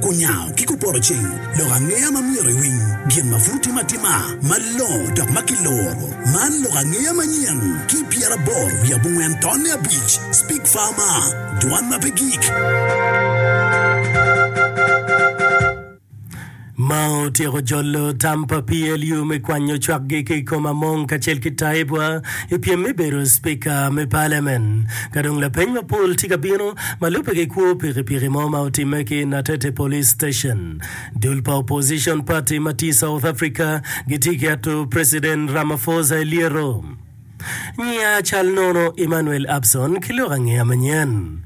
Kunyango ki Kuporoceng, Lok angeya ma myero iwiny, Gin ma pud timo atima, Malongo dok ma kiloro, Man lok angeya manyen, Ki pyeraboro wiye abongwen tonne abic, Speak Far Ma, Dwan ma pe gik. Ma otyeko jolo tam pa PLU me kwanyo cwakgi ki i kom Among kacel ki Taibwa i pyem me bedo Spika me Paliamen. Ka dong lapeny mapol tye ka bino, Ma lubbe ki kwo pikipiki mo ma otimme ki Natete Police Station, dul pa opposition party ma tye i South Africa gitye ki ato President Ramaphosa i lyeto. Nyiya cal nono Emmanuel Abson ki lok angeya manyen.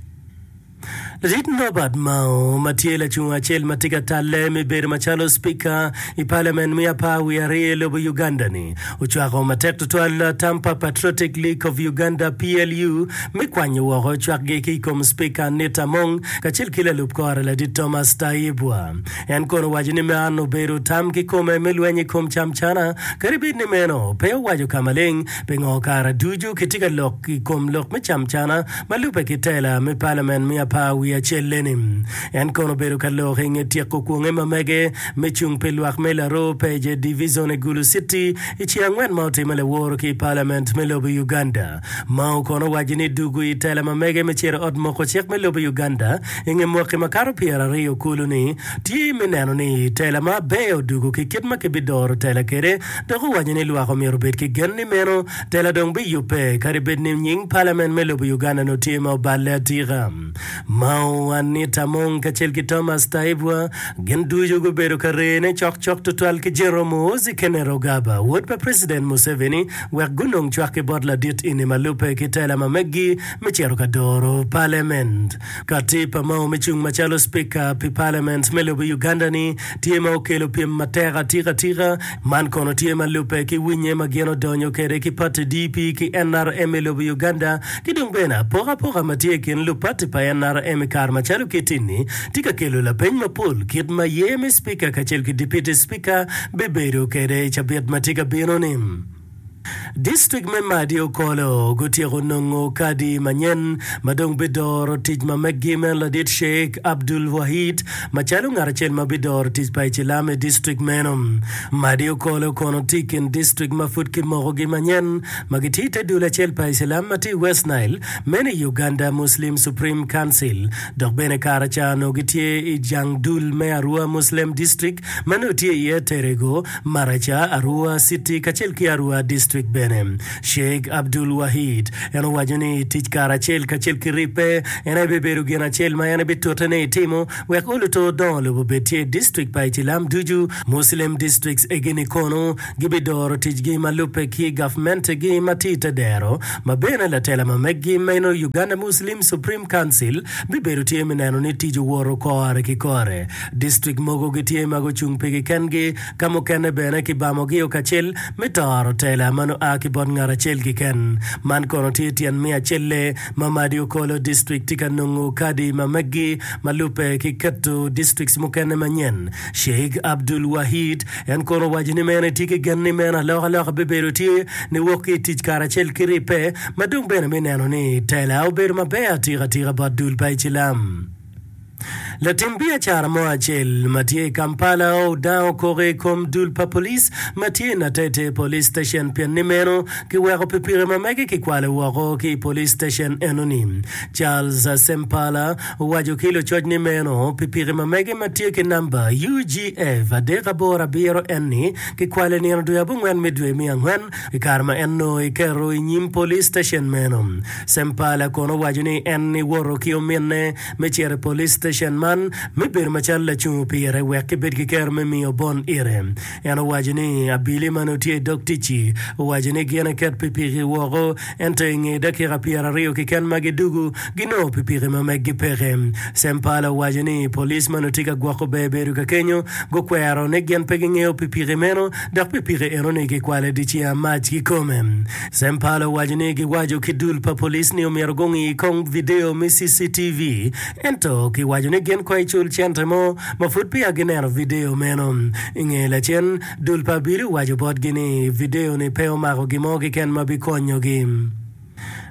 Ladit Norbert Mao ma tye lacung acel ma tye ka talle me bedo macalo Speaker i Parliament me apar wiye aryo i lobo Uganda-ni Ocwako matek tutwal tam pa Patriotic League of Uganda, PLU, me kwanyo woko cwakgi ki i kom Cipika Anita Among kacel ki lalup kore Ladit Thomas Tayebwa. En kono owaco ni man obedo tam kikome me lweny i kom camcana, kadi bed ni meno pe owaco ka maleng pingo kare ducu kitye ka lok i kom lok me camcana ma lubbe ki tela me palamen me apar wiye acel-leni. En kono obedo ka lok i nge tyeko kwonge ma mege me cung pi lwak me laroo pece divicon i Gulu City i ce angwen ma otimme laworo ki i palament me lobo i Uganda. Mao kono owaco ni dugu i tela ma mege me cito ot moko cik me lobo i Uganda i nge mwaki makato pyera aryo kulu ni tye me neno ni tela ma aber odugu ki kit ma kibi doro tela kede dok owaco ni lwak omyero obed ki gen ni meno tela dong bi yubbe kadi bed ni nying palament me lobo Uganda notye ma oballe atika. Mao Anita Among kacel ki Thomas Taiebwa gin ducu gubedo ka rene cokcok tutwal ki General Muhoozi Kainerugaba, wod pa President Museveni, wek gunong cwak ki bot ladit ini ma lubbe ki tela ma meggi me cito ka doro Parliament. Kati pa Mao me cung macalo Speaker pi Parliament me lobo Uganda-ni tye ma okelo pyem matek atika tika Man kono tye ma lubbe ki winye ma gin odonyo kwede ki pati DP ki nrm i lobo Uganda ki dong bene apokapoka ma tye i kin lupati pa nrm i kare macalo kiti-ni tye ka kelo lapeny mapol kit ma ye me Cipika kacel ki Dipiti Cipika bibedo kwede i cabit ma tye ka bino-ni. District me Madi Okolo gutyeko nongo kadi manyen ma dong bidoro tic ma meggi meno ladit Sheikh Abdul Wahid macalo ngat acel ma bidoro tic pa icilam i district meno. Madi Okolo kono tye i kin district ma pud kimokogi manyen ma gitye i te dul acel pa icilam ma tye i West Nile meno i Uganda Muslim Supreme Council dok bene kara ca onongo gitye i jang dul me Arua Muslem District ma nongo tye iye Terego, Maraca, Arua city kacel ki Arua district bene. Sheikh Abdul Wahid en owaco ni tic kare acel kacel ki ribbe en aye bibedo gin acel ma en bitute ni etimo wek oluto dongo lobo obed tye i district pa icilam ducu, Muslim districts egini kono gibidoro ticgi ma lubbe ki gavmentegi ma tye ite dero ma bene latela ma meggi meno Uganda Muslim Supreme Council bibedo tye me neno ni tic owoto kore ki kore. Distrik mogo gitye ma gucung pigi kengi, ka mukene bene kibamogio kacel me toro tela ma nongo a ki bot ngat acel kiken. Man kono tye tyen miyo acelle ma Madi Okolo District tye ka nongo kadi ma meggi ma lubbe ki keto districts mukene manyen. Sheikh Abdul Wahid en kono owaco ni meno etye ki gen ni meno alokaloka bibedo tye ni wok ki itic karacel ki ribbe ma dong bene me neno ni tela obedo maber atika tika bot dul pa icilam. Latim biacara mo acel ma tye i Kampala odango koko i kom dul pa police ma tye i Natete Police Station pien ni meno kiweko pikipiki ma mege kikwalo woko ki i police station enoni. Charles Sempala owaco ki lucoc ni meno pikipiki ma mege ma tye ki namba UGF adek aboro abiro en ni kikwalo i nino dwe abongwen me dwe me angwen I kare ma en onongo kiketo i nyim police station meno, Sempala kono owaco ni en niwoto ki ominne me cito i police station man me bedo macalo lacungo pire wek kibed ki kero me miyo bon ite. En owaco ni abili ma nongo tye i dog ticci owaco ni gin eket pikipiki woko ento i nge dakika pyeraryo keken ma gidugu ginongo pikipiki ma meggi peke. Sempala owaco ni police ma nongo tye ka gwoko ber bedo ka kenyo gukwero ni gin pe gingeyo pikipiki meno dok pikipiki enoni kikwale dici amac kikome. Sempala owaco ni giwaco ki dul pa police ni omyero gungi kong video me CCTV ento kiwaco ni gin kong icul cente mo ma pud peya gineno video meno. Inge lacen, dul pa abili owaco botgi ni video ni pe omako gin mo keken ma bikonyogi.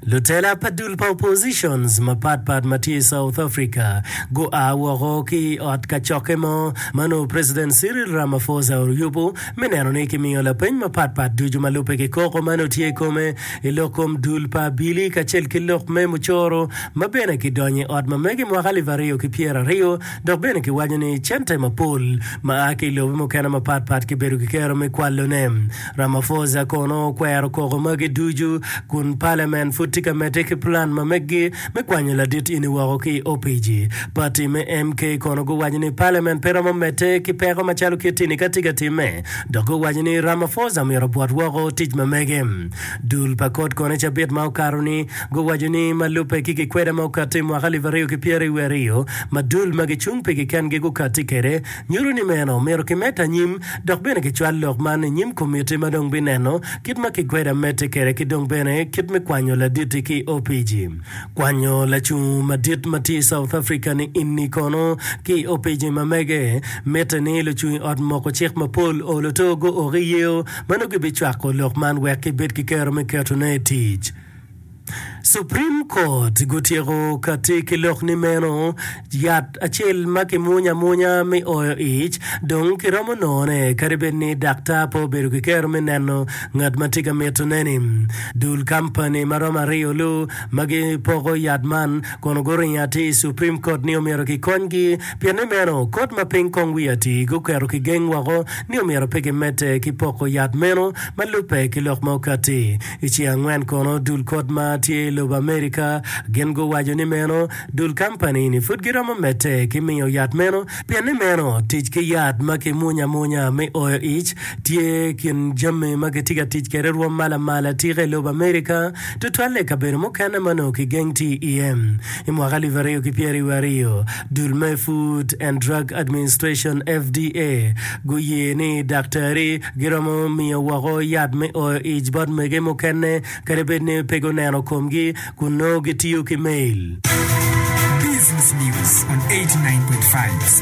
Lutela pa dul pa oppositions mapat pat ma tye i South Africa gua woko ki i ot kacokke mo ma nongo President Cyril Ramaphosa oyubo me neno ni kimiyo lapeny mapat pat ducu ma lubbe ki koko ma nongo tye i kome i lok kom dul pa Abili kacel ki lok me mucoro ma bene kidonyo i ot ma mege mwaka alip aryo ki pyeraryo Dok bene giwaco ni cente mapol ma a ki i lobe mukene mapat pat kibedo kikero me kwalone. Ramaphosa kono okwero koko magi ducu kun palamen pud tye ka medde ki pulan ma meggi me kwanyo ladit eni woko ki i opic-ci. Pati me MK kono guwaco ni palamen pe romo medde ki peko macalo kit eni ka tye ka timme dok guwaco ni Ramaphosa myero obwot woko tic ma mege. Dul pa kot kono i cabit ma okato-ni Guwaco ni ma lubbe ki gikweda ma okatti i mwaka alip aryo ki pyera i wiye aryo ma dul ma gicung pi kikengi gukatti kwede nyuto ni meno omyero kimed anyim dok bene kicwal lok man i nyim komitti ma dong bineno kit ma kikweda medde kwede ki dong bene kit me kwanyo laditti ki opc kwanyo lacung madit ma tye i South Africa ni inni kono ki opc ma mege mitte ni lucung i ot moko cik mapol olo to guoki yeo ma nongo gibicwako lok man wek kibed ki kero me ketone i tic. Supreme Court gutyeko kati ki lok ni meno yat acel ma kimwonyo amwonya me oyo ic dong kiromo nongone kadi bed ni daktar pe obedo ki kero me neno ngat ma tye ka mitone-ni. Dul kampani ma romo aryo lu ma gipoko yat man kono guringo atir i Supreme Court ni omyero kikonygi pien ni meno kot ma piny kong wiye atir guketo kigeng woko ni omyero pe kimedde ki poko yat meno ma lubbe ki lok ma okatti I ci angwen kono dul kot ma tye i lobo Amerika gin guwaco ni meno dul kampani ni pud giromo medde ki miyo yat meno pien ni meno tic ki yat ma ki munya amunya me oyo ic tye kin jami ma gitye ka tic kede rwom ma lamal atika i lobo Amerika tutwalle i kabedo mukene ma onongo ki geng ti iye. I mwaka alip aryo ki pyeraryo wa aryo, dul me Food and Drug Administration, FDA, guye ni daktari giromo miyo woko yat me oyo ic bot mege mukene kadi bed ni pe guneno komgi kun nongo gitiyo ki mail. Business News on 89.5.